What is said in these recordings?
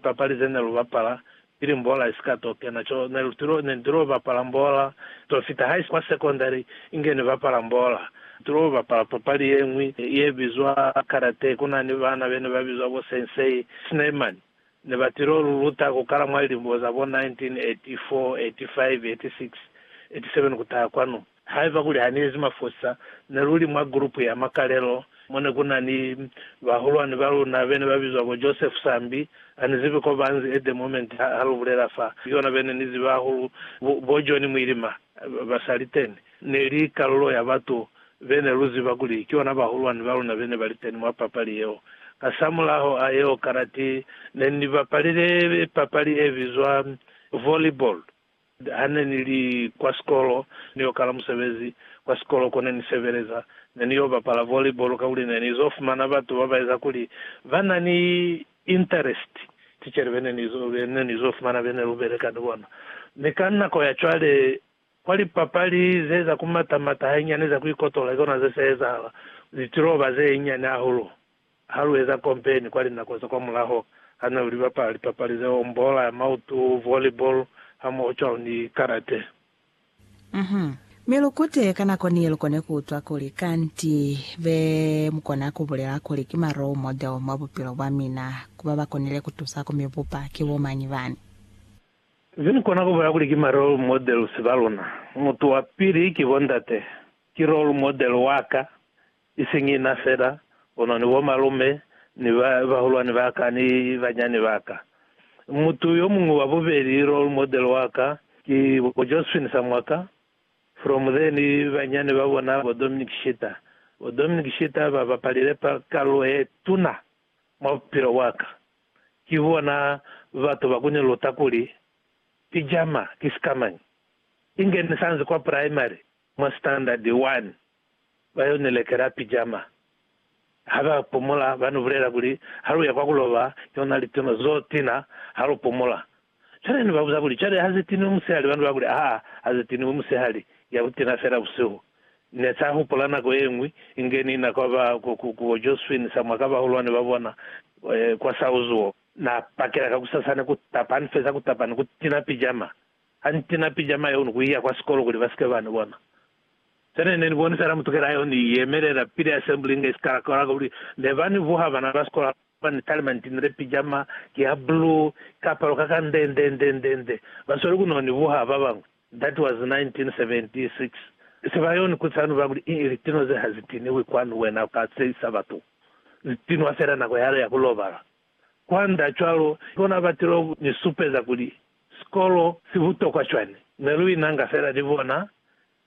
Papali ze ne lu bapala pili mbola i si ka t'o kena co ne lu tilo, ne ni t'o bapala mbola t'o fita haisi kwa sekondari inge ni bapala mbola. Ni t'o bapala papali ye ñwi ye bizwa karate, ku na ni bana be ne ba bizwa bo Sensei Schneemann. Ne ba t'o lu luta ku kala mwa lilimo za bo 1984, 85, 86, 87 ku taha kwanu. Haiba kuli haniezi mafosa, neluli mwa gulupu ya makalelo mone kunani bahulwani baluna bene babizwa bo Joseph Sambi. Anizibi kobaanzi at the moment halubulela fa yona bene nizibi hahulu bo John Mwilima basaliteni. Neli kalulo ya batu bene luziba kuli kiyona bahulwani baluna bene baliteni mwa papali yeo. Hasamulaho a yeo kanati nenibapalile papali ebizwa volleyball. Ha ne ni li kwa sikolo, ni yo kala musebezi kwa sikolo ko ne ni sebeleza. Ne ni yo bapala volleyball kakuli ne ni z'o fumana batu ba ba eza kuli ba na ni interest. Tichere be ne ni z'o fumana be ne lu beleka ni bona ni ka nako ya cwale kwa lipapali ze za ku mata-mata hainyani za ku ikotola, ki kona ze sa ezahala ku litiloba ze nyani hahulu. Ha lu eza kompeni kwa linako za kwamulaho, ha ne lu bapala lipapali ze ombola, mautu, volleyball, hamoho cwalo ni karate. Uhum. Mi lu kute ka nako ni ye lu kone ku utwa kuli kanti be mu kona ku bulela kuli ki ma role model mwa bupilo bwa mina ku ba ba konile ku tusa ku mi bupa ki bo mañi bani? Ze ni kona ku bulela kuli ki ma role models ba luna, mutu wa pili ki bo ndate. Ki role model wa ka, Isiñi ina fela, kono ni bomalume, ni ba, bahulwani ba ka, ni banyani ba ka. Mutu yo muñwi wa bubeli, role model wa ka, ki bo Josephine Samwaka, from there, ni banyani ba bona, bo Dominic Shita. Bo Dominic Shita ba bapalile pa, kalulo ye tuna mwa bupilo bwa ka. Ki bona batu ba ku ni luta kuli, pijama ki sikamañi. Inge ni sa nzi kwa primary, mwa standard one, ba yo ni lekela pijama. Ha ba pumula, ba ni bulela kuli, Ha lu ya kwa ku loba, ki ona litino zo tina ha lu pumula. Cwale ni ba buza kuli, Cwale ha ze tiniwi musihali? Ba ni ba kuli, Aa, ha ze tiniwi musihali, ya ku tina fela busihu. Ne sa hupula nako ye ñwi inge ni na kwa ba, ku, ku, ku bo Josue ni sa mwa ka bahulwani ba bona, eh, kwa Sauzuo. Na pakela kakusasana ku tapa, ha ni feza ku tapa ni ku tina pijama. Ha ni tina pijama yeo ni ku iya kwa sikolo kuli ba si ke ba ni bona. Sena ne ni bonisela mutukela yeo ni yemelela pili Assembly inge sikala kaula kuli ne ba ni vuha bana ba sikola ba ni talima ni tinile pijama ya blue, ikapalo ka ka nde nde nde nde nde. Ba sweli ku no ni vuha ba bañwi. That was 1976. Se ba yo ni kutisa ni ba kuli, Ii, litinwa ze ha zi tiniwi kwanu, wena u ka tseyisa batu zi tinwa fela nako yale ya ku lobala. Kwanda cwalo, ki bona ba tilo ni supeza kuli sikolo si butokwa cwani. Ne lu inanga fela ni bona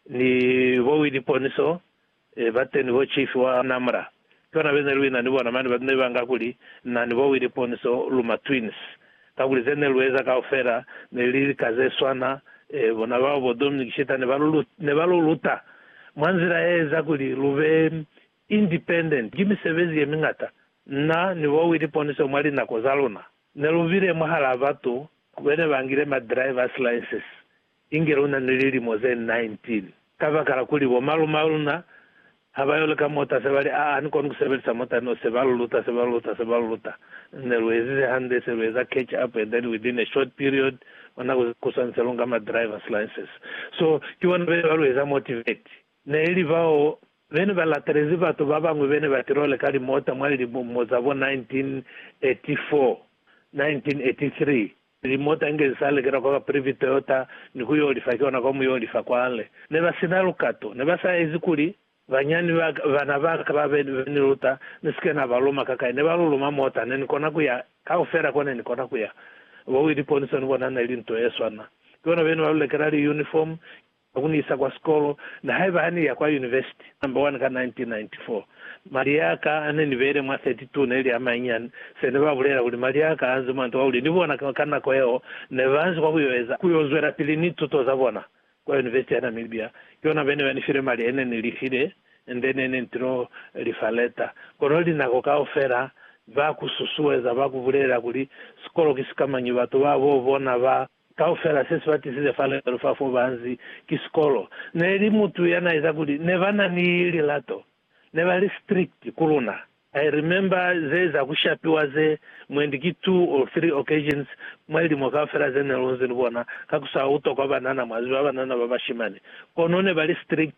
Ni bo Willie Poniso, bateni bo chief wa Namra, ki bona bene luina ni bona mane batu ne ba nga kuli na ni bo Willie Poniso lu ma twins, kakuli ze ne lu eza kaufela ne li lika ze swana. Bona bao bo Dominic Shita ne ba lu ne ba lu luta mwa nzila e eza kuli lu be independent. Ki misebezi ye mingata na ni bo Willie Poniso mwa linako za luna ne lu bile mwahalaa batu bene ba ngile ma driver's license Inge luna ni lilimo ze 19. Kabakala kuli bo malume a luna ha ba yo leka mota, se ba li, Aa, ni koni ku sebelisa mota neo. Se ba lu luta, se ba lu luta, se ba lu luta. Ne lu ezize hande, se lu eza catch up, and then within a short period, mwa nako ze kuswani, se lu nga ma driver's license. So, ki bona bene ba lu eza motivate. Ne li bao bene ba latelezi batu ba bañwi bene ba til'o leka limota mwa lilimo za bo 1984, 1983. Pili mota inge i sa lekela kwa ba Priviteota ni ku y'o lifa ki ona kwa mu y'o lifa kwale. Ne ba si na lukato. Ne ba sa ezi kuli banyani ba ka, bana ba ka ba be ni luta, ni si ke na ba luma kakai. Ne ba luluma mota. Ne ni kona ku ya kaufela ko ne ni kona ku ya. Bo Willie Ponson bona ne li nto ye swana. Ki bona be ne ba lu lekela li uniform, Ba ku ni isa kwa sikolo, na haiba ha ni ya kwa yunivesiti. Number 1 ka 1994, mali ya ka a ne ni beile mwa 32 ne li a mañani. Se ne ba bulela kuli mali a ka a nzi mwa nto kakuli ni bona ka nako yeo ne ba nzi kwa ku yo eza, ku yo zwelapili ni tuto za bona kwa yunivesiti ya Namibia. Ki yona ba ne ba ni file mali e ne ni lifile and then ne ni tilo li fa leta. Kono linako kaufela ba ku susueza, ba ku bulelela kuli sikolo ki sikamañi, batu ba bo bona ba. Kaufela se si ba tisize fa lelo fa fo ba nzi ki sikolo, ne li mutu ya na eza kuli ne ba na ni lilato. Ne ba li strict ku luna. I remember ze za ku shapiwa ze mwendi ki two or three occasions mwa lilimo kaufela ze ne lu nzi ni bona, ka ku sa utwa kwa banana, mwa ziba, banana ba bashimani. Kono ne ba li strict.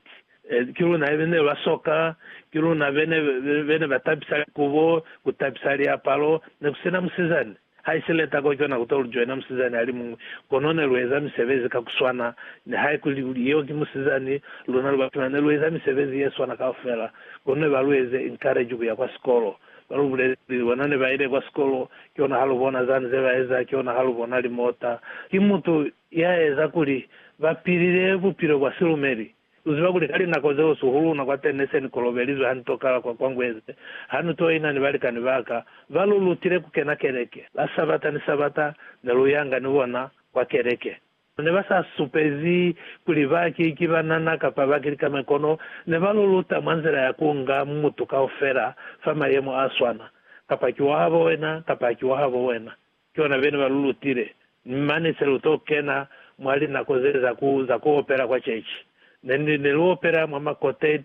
Ki luna be ne ba soka, ki luna be ne ba tabisa likubo, ku tabisa liapalo, ne ku si na musizani. Haisile tako cwana kuto lujoina musizani alimuñwi, kono nelueza misebezi ka kuswana. Nihaikuli kuli yeo ki musizani, luna lubatuna nelueza misebezi yeswana kaufela. Kono nebalueze encourage kuya kwa sikolo. Balubulele kuli bona nebaile kwa sikolo, kihona halubona zani zebaeza, kihona halubona limota. Ki mutu yaeza kuli bapilile bupilo bwa silumeli. Lu ziba kuli ka linako zeo suhu luna kwa Tene se ni kolobelizwe ha ni tokala kwa Kwangweze ha ni toina ni balikani ba ka. Ba lu lutile ku kena keleke. La Sabata ni Sabata ne lu yanga ni bona kwa keleke. Ne ba sa supezi kuli ba ki, ki banana kapa ba ki likame kono ne ba lu luta mwa nzila ya ku nga mutu kaufela fa mayemo a swana, kapa ki wa habo wena kapa ha ki wa habo wena. Ki bona bene ba lu lutile. Mane se lu to kena mwa linako ze za ku, za ku opela kwa cechi. Ne ni, ne lu opela mwa ma quartet,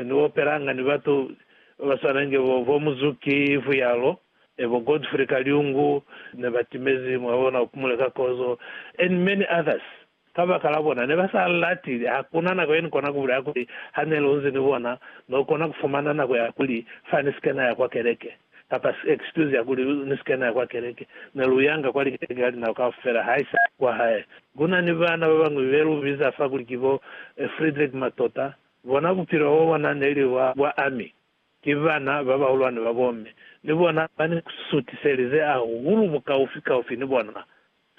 ni opelanga ni batu ba ba swana inge bo, bo Muzuki, ifu yalo, e bo Godfrey Kaliungu, ne ba timezi, mwa bona, Upumule ka Kozo, and many others. Kabakala bona ne ba sa lati, hakuna nako ye ni kona ku bulela kuli ha ne lu nzi ni bona, no kona ku fumana nako ya kuli fa ni si ke na ya kwa keleke, kapa excuse ya kuli ni si ke na ya kwa keleke. Ne lu yanga kwa likeleke ka linako kaufela, haisali kwa hae. Ku na ni baana ba bañwi be lu biza fa kuli ki bo Friedrich Matota. Bona bupilo bwa bona ne li bwa bwa ami. Ki bana ba bahulwane ba bomme. Ni bona ba ni sutiselize hahulu bukaufi-kaufi ni bona.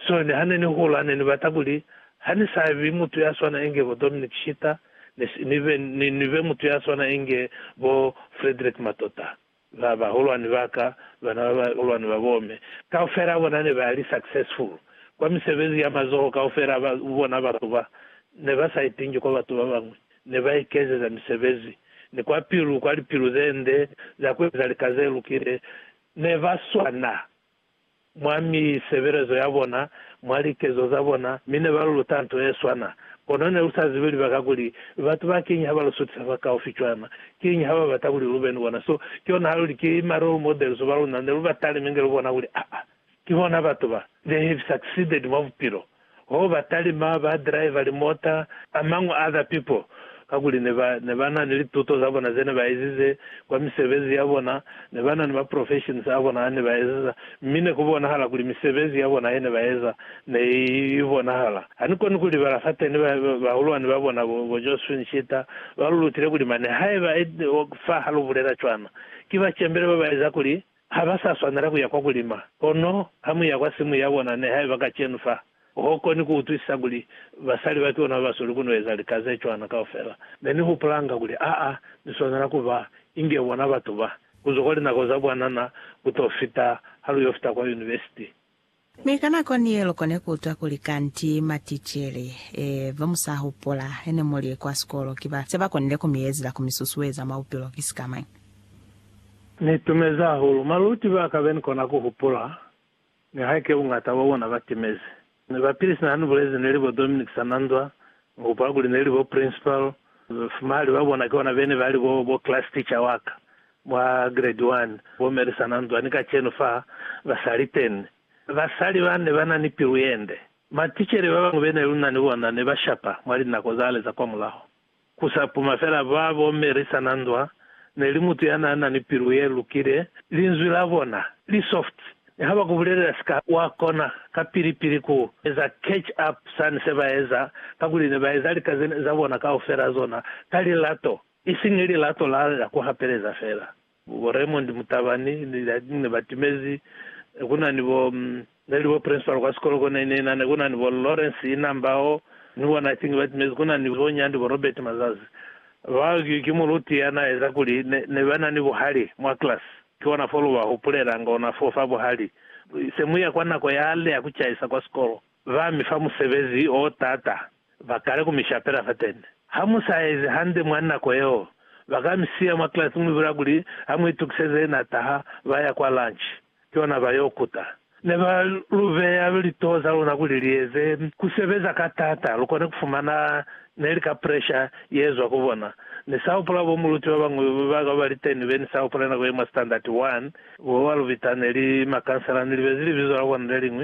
Soni, Ha ne ni hula, ne ni bata kuli ha ni sa bi mutu ya swana inge bo Dominic Shitter, ni, ni be, ni, ni be mutu ya swana inge bo Frederick Matota. Ba, bahulwani ba ka, bana ba bahulwani ba bo me, kaufela bona ne ba li successful kwa misebezi ya mazoho kaufela ba bona. Batu ba ne ba sa itingi kwa batu ba bañwi, ne ba ikezeza misebezi, ni kwa pilu, kwa lipilu ze nde za ku eza lika ze lukile, ne ba swana mwa misebelezo ya bona, mwa likezo za bona, mi ne ba lu luta nto ye swana. Kono ne lu sa zibi libaka kuli batu ba kiñi ha ba lu sutisa fakaufi cwana. Kiñi ha ba bata kuli lu be ni bona? So, ki yona ha lu li, Ki ma role models ba luna ne lu ba talime inge lu bona kuli, aa, ki bona batu ba they have succeeded mwa bupilo. ho ba talima ba driver limota a mañwi other people kakuli ne ba ne ba na ni lituto za bona ze ne ba ezize kwa misebezi ya bona ne ba na ni ma professions a bona a ne ba ezeza mi ne ku bonahala kuli misebezi ya bona ye ne ba eza ne i bonahala ha ni koni ku libala fateni ba bahulwani ba bona bo bo Josephine Shita ba lu lutile kuli mane haiba fa ha lu bulela cwana ki ba cembele ba ba eza kuli Ha ba sa swanela ku ya kwa ku lima. Kono ha mu ya kwa simu ya bona, nihaiba kacenu fa, ho koni ku utwisisa kuli basali ba ki bona ba ba sweli ku no eza lika ze cwana kaufela. Ne ni hupulanga kuli, Aa, ni swanela ku ba inge bona batu ba, ku zwa kwa linako za bwanana ku to fita ha lu yo fita kwa univesiti. Mi ka nako niye lukone kuutwa kuli kanti maticele ba musahupula hene muli kwa sikolo ki ba se ba konile ku mi ezela ku mi susueza mwa bupilo ki sika mañi. Ni itumezi hahulu maluti ba ka be ni kona ku hupula, nihaike buñata bwa bona ba timezi. Mi bapili sina ha ni bulezi neli bo Dominic Sananzwa, ni hupula kuli neli bo principal, fumahali ba bona ki bona bene ba li bo, bo class teacher wa ka. Mwa Grade One, bo Melissa na nzwani kacenu fa ba sa li teni. Basali ba ne ba na ni pilu ye nde. Maticele ba bañwi be ne lu na ni bona ne ba shapa mwa linako zale za kwamulaho. Ku sa puma fela ba bo Melissa na nzwa ne li mutu ya n'a na ni pilu ye lukile, linzwi la bona li soft. Ni ha ba ku bulelela sika, wa kona kapili-pili ku eza catch up sani se ba eza, kakuli ne ba eza lika ze ne za bona kaufela zona ka lilato. Isiñi lilato la la ku hapeleza fela. Bo Raymond Mutabani ne ba timezi, ku na ni bo, ne li bo principal kwa sikolo ko 1999, ku na ni bo Lawrence Inambao, ni bona kiñi ba timezi, ku na ni bo Nyandi, bo Robert Mazazi. Bao ki, ki muluti ya na eza kuli ne, ne ba na ni buhali mwa class. Ki ona fo lu ba hupulelanga ona foo fa buhali. Se mu ya kwa nako yale ya ku caisa kwa sikolo. Ba mi fa musebezi o t'ata, ba kale ku mi shapela fateni. Ha mu sa ezi hande mwa nako yeo, ba ka mi siya mwa klasi mu bula kuli ha mu itukiseze n'a taha, ba ya kwa lunch, ki ona ba y'o kuta. Ne ba lu beya litoho za luna kuli li eze ku sebeza ka t'ata lu kone ku fumana ne li ka presha ye zwa ku bona. Ni sa hupula bo muluti ba bañwi ba ka ba li teni be ni sa hupule nako ye mwa Standard 1 bo ba lu bita ne li makansela. Ni libezi libizo la bona le liñwi.